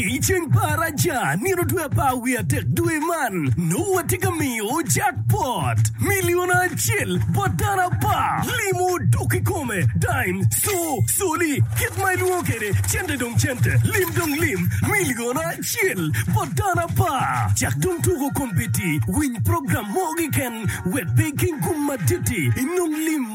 I ceng pa Araca, nino dwe apar wiye adek dwe man, nongo watye ka miyo jackpot, milion acel bot dano apar, limo dok i kome, dime, co, coli, kit ma ilwongo kwede cente dong cente, lim dong lim, milion acel bot dano apar. Cak dong tuko kombeddi, winy program mo keken wek pe iking gum madit-ti, inong lim.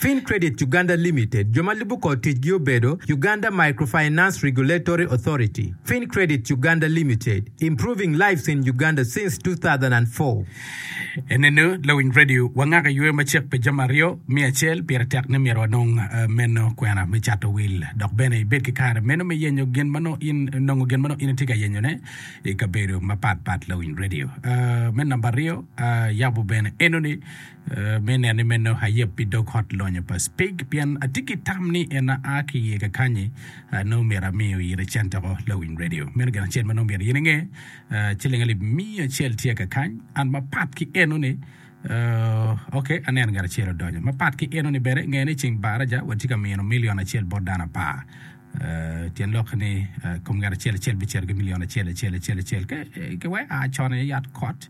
Fin Credit Uganda Limited, jo ma lubo kor ticgi obedo, Uganda Microfinance Regulatory Authority, Fin Credit Uganda Limited, Improving Lives in Uganda since 2004. Enene lawiny radio wangaka yweyo macek pi jami aryo, me acel, pire tek ni myero wanong meno kwena me cato wil dok bene ibed ki kare meno me yenyo gin ma nongo in nongo gin ma nongo in itye ka yenyone i kabedo mapat pat lawiny radio me namba aryo yabo bene enoni Me neni meno, ayeb pi dog ot lonyo pa Speke pien atye ki tam ni en aa ki iye kakanyi. Nongo myero ami oyire centeko lawiny redio. Meno gin acel ma nongo myero in inge. Ciling alip miya acel tye kakany. An mapat ki enoni, ok, aneno ngat acel odonyo. Mapat ki enoni bene, ngeni ceng baraja watye ka mino milion acel bot dano apar. Tyen lokke ni, kom ngat acel acel bicito ki milion acel acel acel acel. Ka iweko a con i yat kot,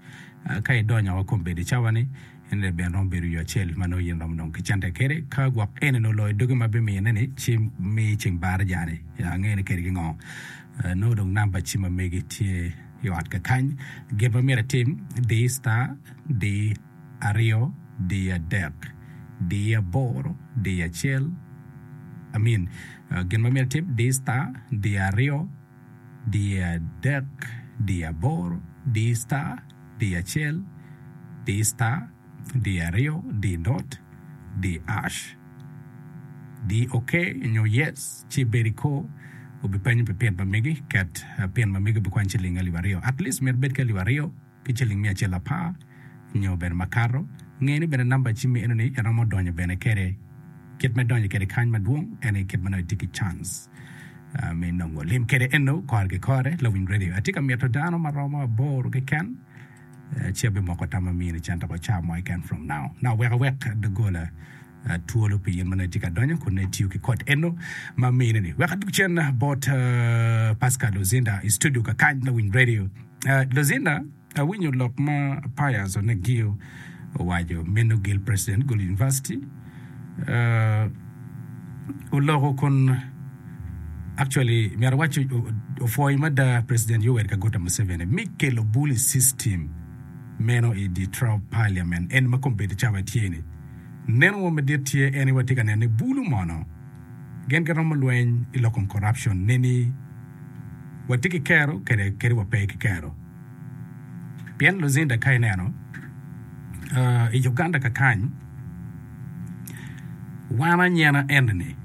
ka idonyo woko kom bedo i cawa-ni, en aye bene romo bedo yo acel ma nongo in iromo dong kicente kwede. Ka gwok eni nongo oloyo dogi ma bimine-ni, ci mi ceng Baraja-ni ange ni keri kingo. Nongo dong namba cim ma megi tye i ot kakany. Gin ma myero itim, di star, di. aryo, diyo adek, diyo aboro, diyo acel, I mean, gin ma myero itim, diy star, diyo aryo, diyo adek, diyo aboro, diy star, diyo acel, diy star, diyo aryo, diy dot, diy ash, diy ok nyo yes, ci ibed i kor, obipenyo pi pin ma megi, ket pin ma megi obikwany ciling alip aryo, at least myero ibed ki alip aryo. ki ciling miya acel apar nyo bene makato, nge ni bene namba cimmi enoni iromo donyo bene kede. Kit me donyo kede kany madwong en ni kit manongo itye ki cans me nongo lim kede eno kore ki kore. Lawiny Radio atye ka mito dano maromo aboro keken ci abimoko tam ma amini cen dok oca mo keken from now now weko wek dogola Atwolo pi in ma nongo itye ka donyo kun nongo itiyo ki kod eno ma mine ni. Wek adug cen bot uh, Pascal Luzinda i studio kakany me Winy Radio. Uh, Luzinda, awinyo lok ma Pius Onegio owaco, meno gil president Gulu University. Uh, oloko kun actually myero awac o- o- opwoyo mada president Yoweri Kaguta Museveni mi kelo bully system meno i Detroit Parliament en ma kombedo cawa tye-ni. Neno mo madit tye en ni watye ka neno ni bulu mono gin giromo lweny i lok kom corruption ne ni watye ki kero kede kadi wa pe ki kero. Pien Luzinda ka ineno i Uganda kakany wan anyena eni ni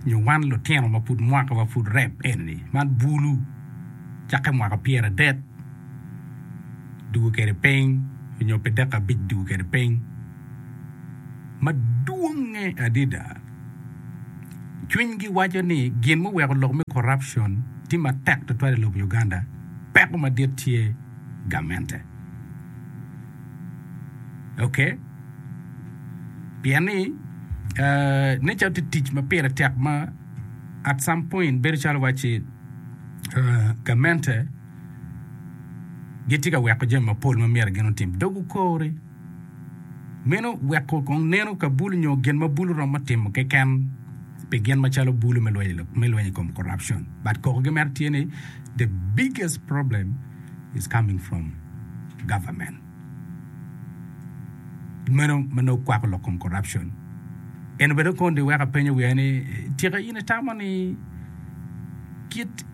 nyo wan lutino ma pud mwaka wa pud rep eni ni man bulu cakke mwaka pyera adek dugo kede piny nyo pi deka abic dugo kede piny. madwongnge adada. Cwinygi waco ni gin muweko lok me corruption tye matek tutwal i lobo Uganda, peko madit tye gamente. Ok, pien ni nen calo tye tic ma pire tek ma at some point bedo calo wacci gamente gitye ka weko jami mapol ma myero gin otim. Dog okori. Meno weko kong neno ka bulu nyo gin ma bulu romo timo keken pi gin macalo bulu me lweny i kom corruption but koko gi mere tye ni the biggest problem is coming from government meno ma nongo kwako lok kom corruption eno bene kong di weko apenyo wiya ni tika in itamo ni kit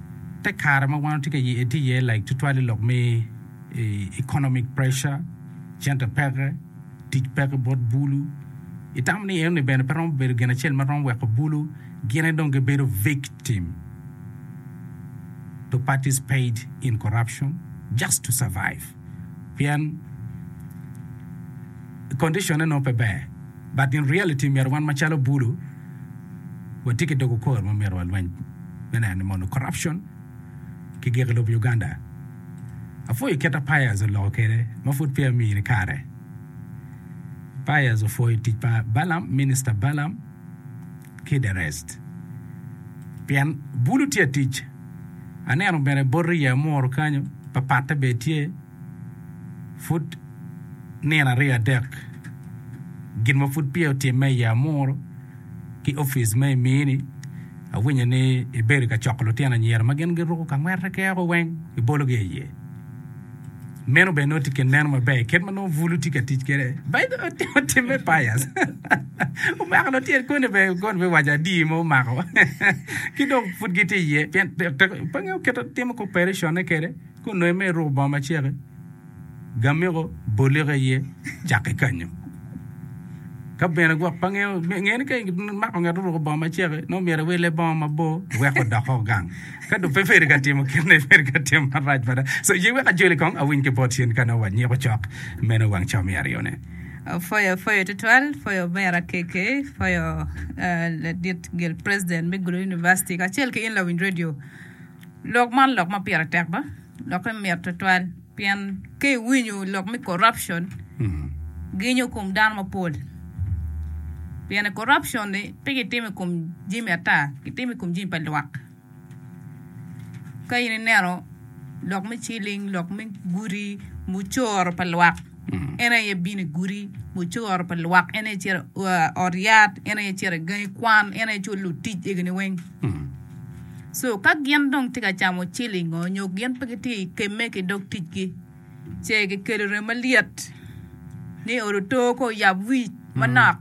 te kare ma wan watye ka ye tye iye like tutwal i lok me economic pressure Cente peke, tic peke bot bulu. Itamo ni enoni bene pe romo bedo gin acel ma romo weko bulu gine dong gibedo victim to participate in corruption just to survive? Pien condition-ne nongo pe ber, but in reality myero wan macalo bulu watye ki dog okor ma myero walweny me neno ni mondo corruption ki gik lub Uganda. Apwoyo kit ma Pires oloko kwede ma pud peya omiyo ni kare. Pires opwoyo tic pa Balam, Minister Balam ki the rest. Pien bulu tye atic. Aneno bene bot rii amuru kanyo, papatte bene tye. Pud nino aryo adek gin ma pud peya otimme i Amuru ki opic ma i Miini, awinyo ni ibedo ka coko lutino anyira ma gin giruku ka ngwete keko weng ki bolo gi iye. Meno bene nongo tye kit neno maber kit ma nongo bulu tye ka tic kede. Bayi otimme payas. Omako lutino koni bene koni bene waco adii mo omako. Ki dong pud gitye iye pien pe ngeyo kit timo cooperation ne kede. Kun nongo imiyo iruko bongo maceke, gamiko bolike iye, cak ikanyo. Ka bene gwok pa ngeyo, nge ni ka imako ngat oruko bongo maceke, nongo myero iwille bongo mabor, wek odok oko gang. Ka dong pe peri ka timo kit ni peri ka timo marac mada. So, ye wek ajoli kong, awiny ki bot cen ka nongo wanyiko cok meno wang co me aryo-ne. Pwoyo, pwoyo tutwal, pwoyo omera KK, pwoyo ladit gel president me Gulu University, kacel ki in lawiny radio. Lok man lok ma pire tek ba? Lokke mit tutwal pien ka iwinyo lok me corruption ginyo kom dano mapol. Piene corruption-ni pe kitimo i kom jami ata, kitimo i kom jami pa lwak. Ka in ineno lok me ciling, lok me guti, mucoro pa lwak en aye bino i guti, mucoro pa lwak en aye cito i ot yat, en aye cito i gangi kwan, en aye culo lutic egini weng. Co ka gin dong tye ka camo cilingo nyo gin pe gitye i kemme ki dog ticgi ce gikelo rem malyet ni odo too ka oyab wi manok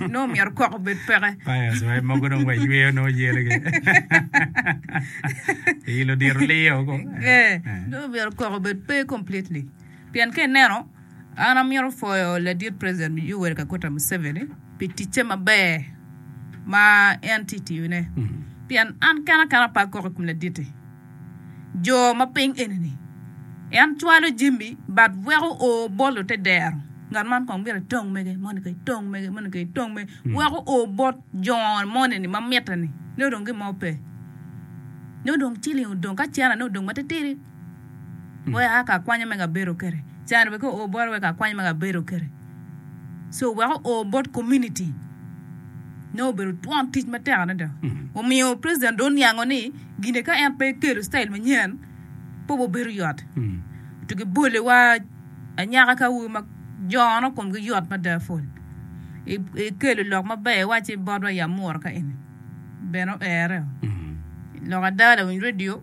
nongo myero kok obed peke. Nongo myero kok obed pe completely pien ka ineno An amito pwoyo ladit president Yoweri Kaguta Museveni pi ticce maber ma en tye ka tiyone pien an kene kara ape akok i kom ladit-ti jo ma piny eni-ni en cwalo jami but weko o bolo te dero ngat man kong myero etong mege moni kong etong mege moni kong etong mege weko o bot jo moni-ni ma mitte-ni nongo dong gin mo pe nongo dong ciling odong ka cene-ni odong matitidi. Wek a ka kwanya mega abedo kede. Caro wek o o bota wek a kwanya mega abedo kede. So wek o o bot community ne obedo twon tic matek adada. Omiyo president do oniango ni gine ka en pe ekelo style manyen pe obo bedo yot. To gi bole wa anyaka ka awobi ma jono komgi yot mada pol. Ekelo lok maber wa ci botwa ya mura ka eni. bene oero lok ada lawiny radio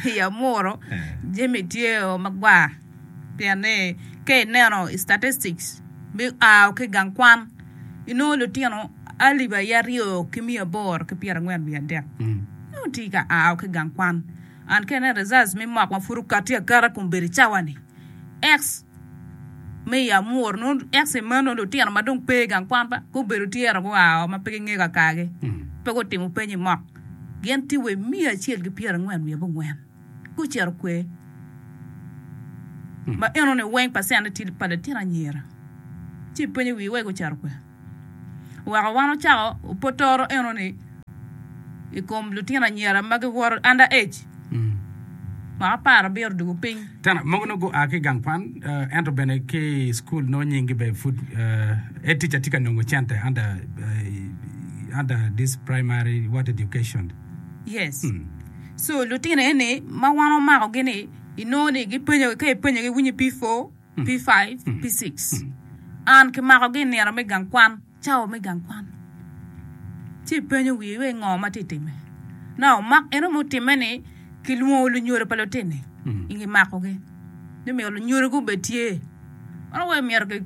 i amuru jami tye o magwar pien ni ka ineno i statistics me ao ki gang kwan inongo litino alip aye aryo ki miya aboro ki pyera angwen wiye adek nongo tye ka ao ki gang kwan and ka ineno results me mock ma pud okati akata kun bedo i cawa ni X me i amur nongo ex i meno lutino ma dong pe i gang kwan ba gubedo tye ento gua oo ma pe gingeyo kakagi pe gutimo peny i mok gin tye wa i miya acel ki pyera angwen wiye abongwen gucito kwer ma enoni weng pacen ne tye pa litino anyira ci ipenyo wii wai gucito kwer. Weko wan ocako potoro enoni i kom lutino anyira ma giwoto under age ma aparo biro dwogo piny. Tena mogo nongo gua ki i gang kwan eh, ento bene ki i cukul nongo nyinggi bene pud eh, eh, tic atye ka nongo cente under, eh, under this primary what education. Yes. So lutino eni ma wan omakogi ni inongo ni gipenyogi ka ipenyogi winyo P4 P5, P6, An ki makogi i nino me gang kwan, cawa me gang kwan. Ci ipenyo wii wei ngo ma ti time. Na omak eno mo time ni ki lwongo lunyodo pa lutini ingi makogi. Ni myero lunyodo gu be tye. Ono wei myero ki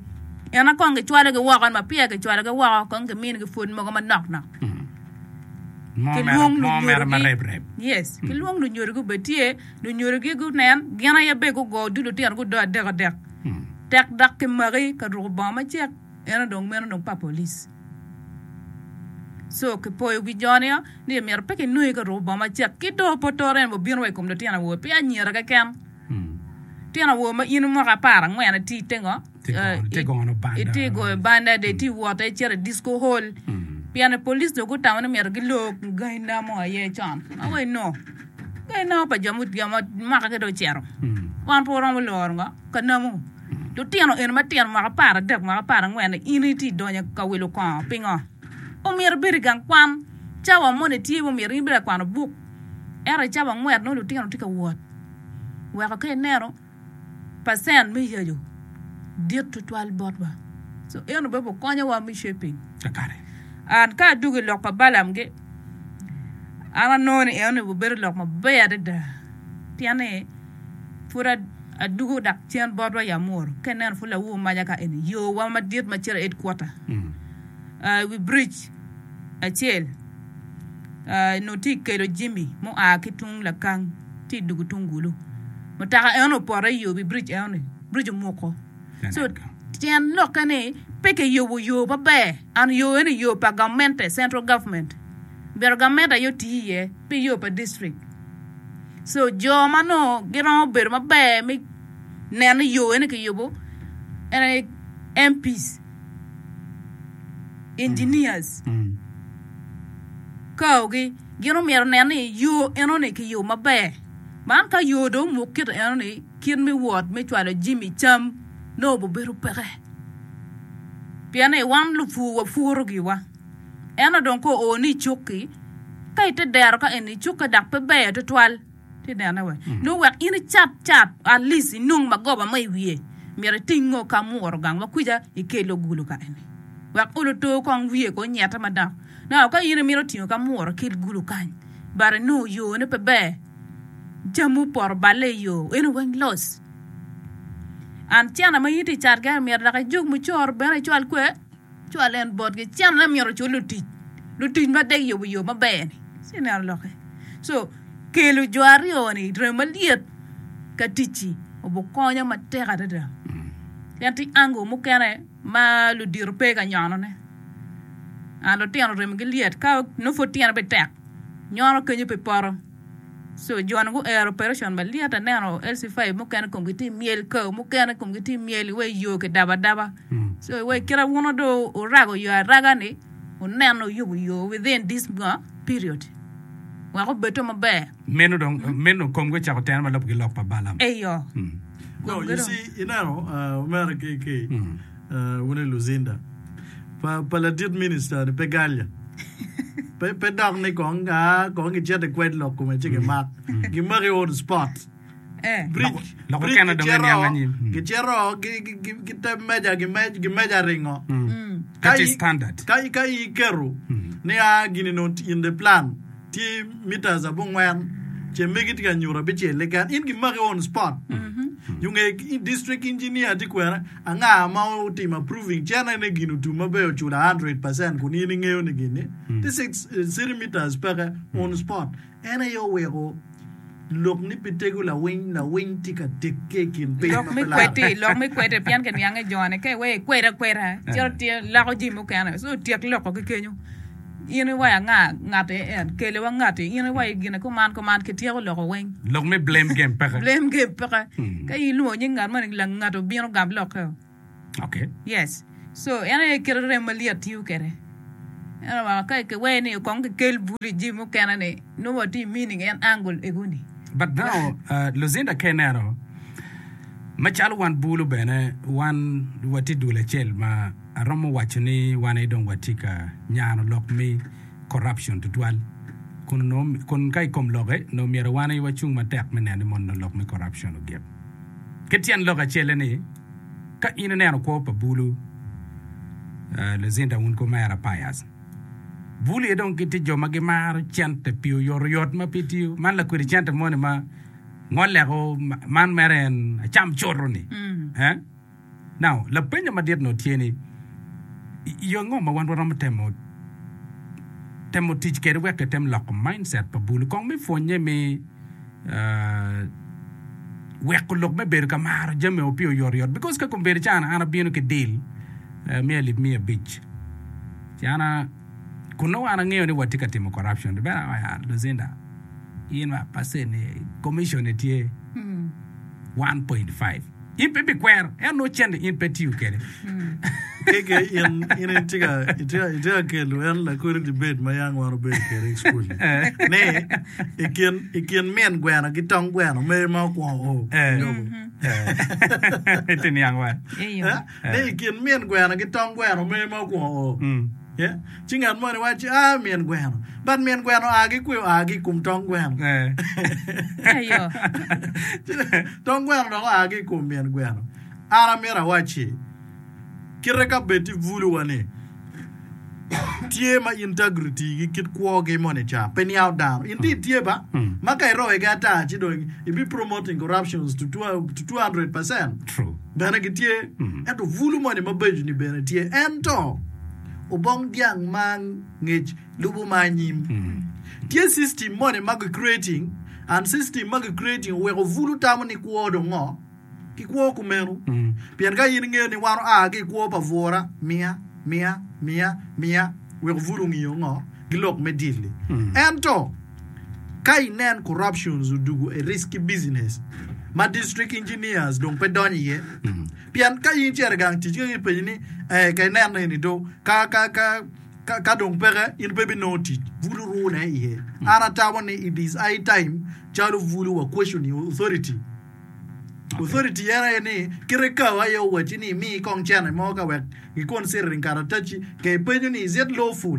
ena kong ki cwalo gi woko ma piya ki cwalo gi woko kong ki mini gi food mogo ma nok nok. Ki lwong lunyodo gi. Yes, ki lwong lunyodo gu be tye. Lunyodogi gunen gin aye bene gugo odilo otino gudo adek adek. Tek dok kimaki ka ruko bongo macek eno dong meno dong pa police. So kipoyo wi jo niyo ni omyero pe kinongi ka ruko bongo macek ki dong pe otoro en bene obino wa i kom litino awobe pi anyira keken. Litino awobe ma in mwaka apar angwen ati te ngo? itye goyo banda dong itye wot i cito i disco hall pien police dong gutamo ni myero gilor gangi na mo aye con ma wa inongo ka inongo pa jo mwaka ki dong ocito wan pe waromo loro ngo ka namu lutino eni matino mwaka apar adek mwaka apar angwen ni in itye idonyo ka wilo kongo pingo omyero ibed i gang kwan cawa moni tye ma omyero in ibed ka kwano buk ento i cawa angwen nongo lutino tye ka wot weko ka ineno pacent me yaco dit tutwal botwa. So en obebe okonyowa me shaping. And ka adwogo i lok pa Balaam gi, an anongo ni en onego bedo lok maber adada pien ni pud adwogo dok cen botwa ya mworo ka ineno pud lawu omaja ka eni yowa madit ma cito i headquarter, uh, i wi bridge acel. nongo tye ka kelo jami mua ki tung lakang tye ka dwogo tung kulu mutoka eno opoto i wi biric enoni biric omuko ci tyen lokke ni pe kiyubo yo maber and yo eno yo pa gamente central government omyero gamente aye oti iye pe yo pa district so jo ma nongo giromo bedo maber me neno ni yo eno kiyubo en aye MP's, engineers. kaogi, gin omyero onen ni yo enoni kiyubo maber. Man ka yo dong omuk kit enoni, kit me wot me cwalo jami, cam nongo bibedo peke. Pien ni wan lupur wapuro giwa. Ento dong ka ooni i cukki, ka ite dero ka eni cukki dok pe ber tutwal. Nongo wek in icat cat atleast inong magoba mo i wiye myero iting ngo ka muro gang ma kwica ikelo ogulu ka eni wek olo too kong wiye ko onyete mada now ka in imito tingo ka muro kel gulu kany but inongo yo ne pe ber jami opoto balle i yo eno weng loss and cene ma in tye icat kene myero dok ijuk mucoro bene icwal kwer. Cwal en botgi. Cen aye myero ocul lutic, lutic ma dek yubo yo maber-ni. Ci ineno lokke. Co, kelo jo aryo-ni i rem malyet ka ticci obikonyo matek adada. Pien tye angle mukene ma ludito pe ka nyonone. Ah, lutino remogi lyet. Ka nongo pud tyen aye bene tek, nyono kenyo pi poto. Sojourn guero operation malyet aneno LC five mukene komgi tye myel kao mukene komgi tye myel iwe yo ki daba daba so iwe kira wuno do orago yo araga ni uneno uyubo yo within this nga period wek obedo maber Meno dong meno komgi ocako tene ma lobgi lok pa Balaam. eyo No, komgi you dong see, ineno, uh, mere ki, ki, Wun i Lucinda pa ladit minista ni pe galya. Pe dok ni kong gicito i kwed lok kome ci gimak. Gimaki on spot. Bridge gicito gite meja gimeja ringo. Ka in iketo ni a gini nongo in the plan tye metres abongwen ce megi tye ka nyuto abicel keken in gimaki on spot. Yunge district engineer tye kwene. Anga ma otimo approving cene ni gin otum maber oculo 100 percent kun in ingeyo ni gin ni ti 6 centimeters peke on spot en aye oweko lok ni pi tego lawiny lawiny ti ka tekke i kin piny Lok ma me pe laram. kwedi, lok me kwede pien ke niange jone ke wee ikwed akweda cito tye loko ji mukene so tyek loko ki kenyo. In iwayo anga? Ngape en? Kele wa ngati. In iwayo gine kuman kuman, kityeko loko weng. Lok me blame game peke. Blame game peke. Hmm. Ka in ilwongo nying ngat mani, lang ngato bino gam lokkeo. Okay. Yes. So, en aye kelo rem ma lyet tiyo kede. Eno wa, ka kiweye ni kong kikel buli ji mukene ni, no wa ti meaning en angle egoni. But now, uh, Lucinda ka ineno, macalo wan bulu bene, wan wa ti dul acel ma Aromo waco ni wan aye dong watye ka nyano lok me corruption tutwal. Kun onongo, kun ka i kom lokke, onongo myero wan aye wacung matek me neno ni mono lok me corruption ogik. Kit tyen lok acel-le ni, ka in ineno kwo pa Bulu, uh, Lucinda wun kwo mera Pius, Bulu aye dong gitye jo ma gimaro cente pi oyotoyot ma pe tiyo. Man lakwedi cente moni ma ngoleko ma- man mere en acam coto-ni. Eh? Now, lapenyo madit onongo tye ni, Yo ango ma wan waromo temo temo tic kwede wek etem loko mindset pa bulu kong me pwonye me weko lok me bedo ka maro jami o pi oyotoyot? Because ka kong bedo cana, an abino ki deal me alip miya abic cana kun nongo an angeyo ni watye ka timo corruption. Di bene awaco, ah, Lucinda, in wa percent-ni, commission-ni tye one point five. In pe ibikwero en nongo cente in pe itiyo kwede. Keke in in itye ka itye itye ka kelo en lakodi debate ma yam wan obedo kwede i school ni i kin i kin min gweno ki tong gweno mer ma okwongo o Eh. lobo. Itye niang wa. Eyo. Eh, Ni i kin min gweno ki tong gweno mer ma okwongo o. Mm. Ci ngat moni wacci, A, min gweno. But min gweno oa ki kwiyo? Oa ki i kom tong gweno. Ci tong gweno dok oa ki i kom min gweno. An amito awacci, kite ka bed ti buluwa ni, tye ma integrity gi kit kwogi moni ca pe niawo dano. In ti tye ba? Ma ka iroyo gi ata ci dong ibi promoting corruptions to 200%. Bene gitye, ento bulu moni mabeco-ni bene tye. Ento, obong dyang ma ngec lubo ma anyim. Tye system moni ma gi creating, and system ma gi creating oweko bulu tamo ni kwo dong ngo? Ki kwo kumeno. Pien ka in ingeyo ni wan oa ki i kwo pa bwura, miya, miya, miya, miya, weko bulu ngiyo ngo? Gilok me dil-li. Ento. Ka i nen corruptions odugo e risk ki business ma district engineers dong pe donyo iye pien ka in cere gang tic kaki penyi ni eh ka ineno eni do ka ka ka ka, ka dong peke in pe binongo tic bul oruu ne iye an atamo ni it is high time calo bulu wa question i authority authority en aye ni kite kao aye owacci ni imi kong cene mo ka wek gikonseriring karataci ka ipenyo ni is it lawful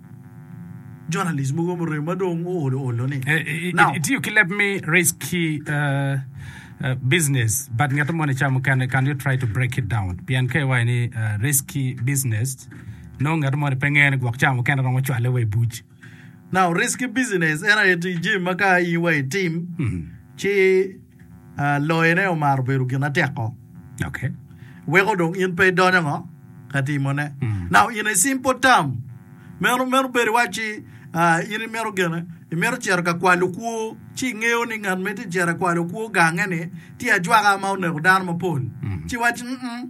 Journalist mogo murem ma dong oolo olo ni. Now. Itiyo ki leb me risky business but ngeto moni ca mukene can you try to break it down pien ka iwaco ni risky business nongo ngeto moni pe ngene gwok ca mukene romo cwale wa i buc. Now risky business en aye tic jami ma ka in wa itim ci Loyone omaro bedo gin ateko. Weko dong in pe idonyo ngo ka timone. Now in a simple term, meno meno bedo iwacci in imito gene imito cito ka kwalo kwo ci ingeyo ni ngat ma itye cito ka kwalo kwo gange ni tye ajwaka ma oneko dano mapol ci iwacci mm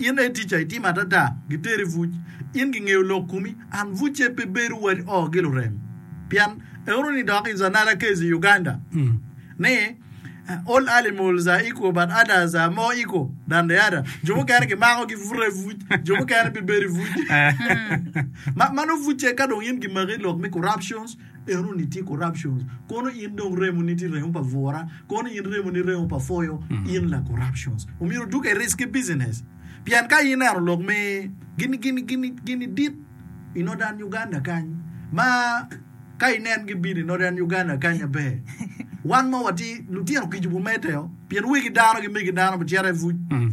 In aye ticca, itimo adada, giter i buc. In gingeyo lok komi, an bucce pe bedo wadi oh gilurem. Pien euro ni dok is another case i Uganda ni all animals are equal but others are more equal than the other. Jo mukene gimako gibuta i buc, jo mukene pe bedo i buc. Ma, mano bucce ka dong in gimaki i lok me corruptions, Eno ni tye corruptions kono in dong remo ni tye remo pa bura kono in remo ni remo pa foyo mm. in la corruptions omyero duk e risky business pien ka in neno lok me gini gini gini gini dit i northern Uganda kany ma ka inen gi bini northern Uganda kany abe wan ma wati lutino kijubu meteo pien wigi dano gi megi dano bicere vuc mm.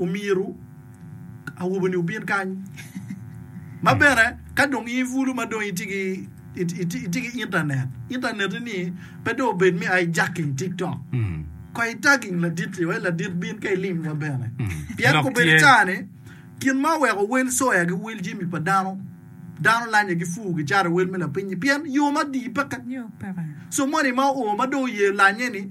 Omyero awobe ni obin kany. Ma bene ka dong i bulu ma dong itye ki itye ki internet, internet ni pe dong obed me ai jacking TikTok. Ko i tagging ladit li wai ladit bin ka ilim wa bene. Pien ko bedi cani kin ma oweko wel soya gi wel jemi pa dano, dano lanye gi fuu gi caro i wel me lapiny ni pien yo ma di peke. So money ma o ma dong oye lanye ni.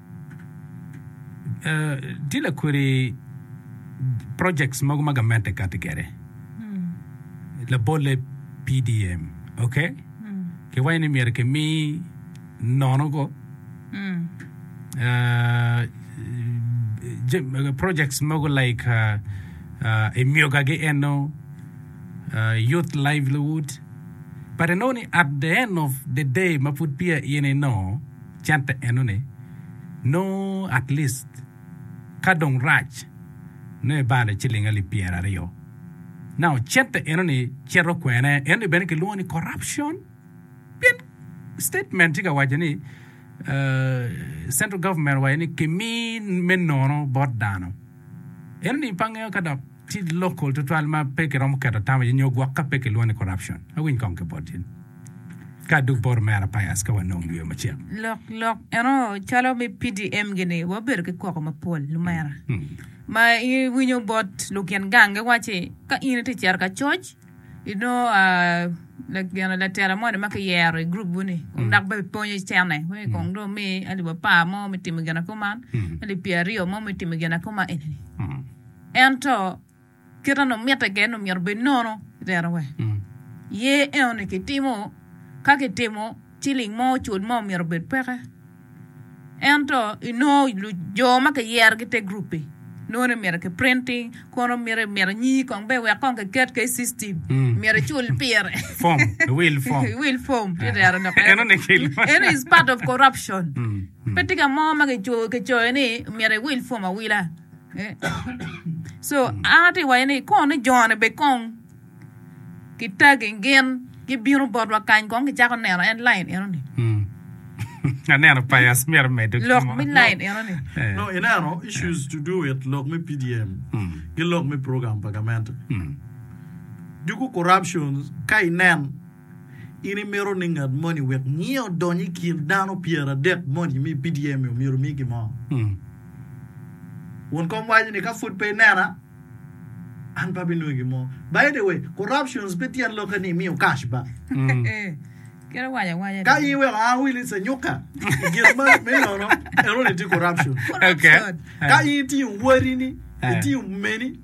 Tye lakwede projects mogo ma gamente kati kwede. Labole PDM, okay? Kiwaco ni myero kimi nono go uh, jam- uh, projects mogo like uh, uh, emyogagi eno uh, youth livelihood but inongo ni at the end of the day ma pud peya in ino cente enoni nongo at least ka dong rac nongo ibalo i ciling alip pyera aryo. Now cente enoni cito kwene enoni bene kilwongo ni corruption pien statement tye ka waco ni central government owaco ni kimi me nono bot dano enoni pe angeyo ka dok. Ci local tutwal ma pe ki romo keto tam iye nyo gwok ka pe ki lwongo ni corruption. Awiny kong ki bot in. Ka adug bot omera Pius ka wanong yweyo macek. Lok lok eno calo me PDM gi ni wabedo ki koko mapol lumera. Ma i winyo bot lukin gang gi waci ka in iti cito ka coc inongo ah gino latela moni ma ki yero i group wuni kong dok bene pony i cene wek kong dong mi alip apar mo me timo gina kuman alip pyera aryo mo me timo gina kuman eni ni. Ento, kit ma mitte gene omyero obed nono i rerowa iye enoni kitimo. Ka kitimo, ciling mo ocul mo myero obed peke. Ento inongo jo ma kiyerogi i te gurup-pi nongo ni myero kiprinti kono miti miti nyingi kong bene wek kong kiket ki i ictim. Myero icul pire. Fom, iwil fom. Iwil fom ci rero dok. Enoni kilo. Enoni is part of corruption. Pe tika mo ma kicoyo ni myero iwil fom awila. An atye ka waco ni kong ni jo-ni bene kong kitagi gin gibino botwa kany kong gicako neno en lain eno-ni lok me lain eno-ni. In imito ni ngat moni wek nyinge odony i kin dano pyeradek moni mi PDM-mi omyero omi gin mo? Won kom waco ni, Ka pud pe inena, an pe abinongi gin mo. By the way, corruptions pe tyen lokke ni imiyo cash ba. Ka in iweko Ann Willis anyuka i gin ma me nono, enoni tye corruption. Ka in itiyo wodini, itiyo meni,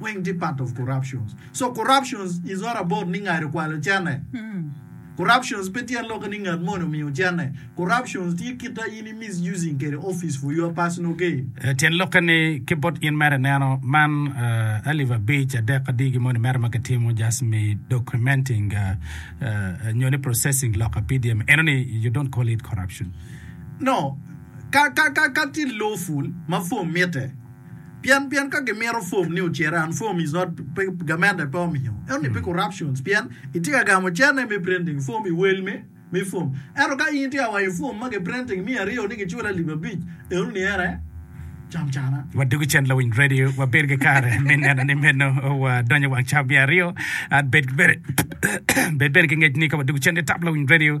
Weng tye part of corruptions. So corruptions is not about ni ngai okwalo cene. Corruptions pe tye aloke ni ngat moni omiyo cene. Corruptions tye kit a in i misusing kede office for your personal gain. Tyen lokke ni ki bot in mere ineno man alip abic, adek, adigi moni mere ma kitimo just me documenting nyo ni processing lok a PDM eno ni you don't call it corruption? No. Ka, ka, ka, ka tye lawful ma form mitte. Pien pien ka gimito form ni ocere and form is not pe government aye pe omiyo ento ni pe corruptions pien itye ka gamo cene me printing form i wel me me form ento ka in itye ka wanyo form ma ki printing miya aryo ni gicule alip abic eno ni ene cam cana. Wadwogi cen lawiny radio wabed ki kare me neno ni meno wadonyo i wang ca miya aryo and bed bene bed bene ki ngec ni ka wadwogi cen ni tap lawiny radio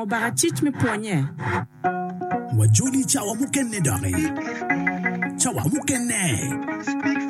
Obaka cic me pwonye. Wajoli cawa mukene doki. Cawa mukene.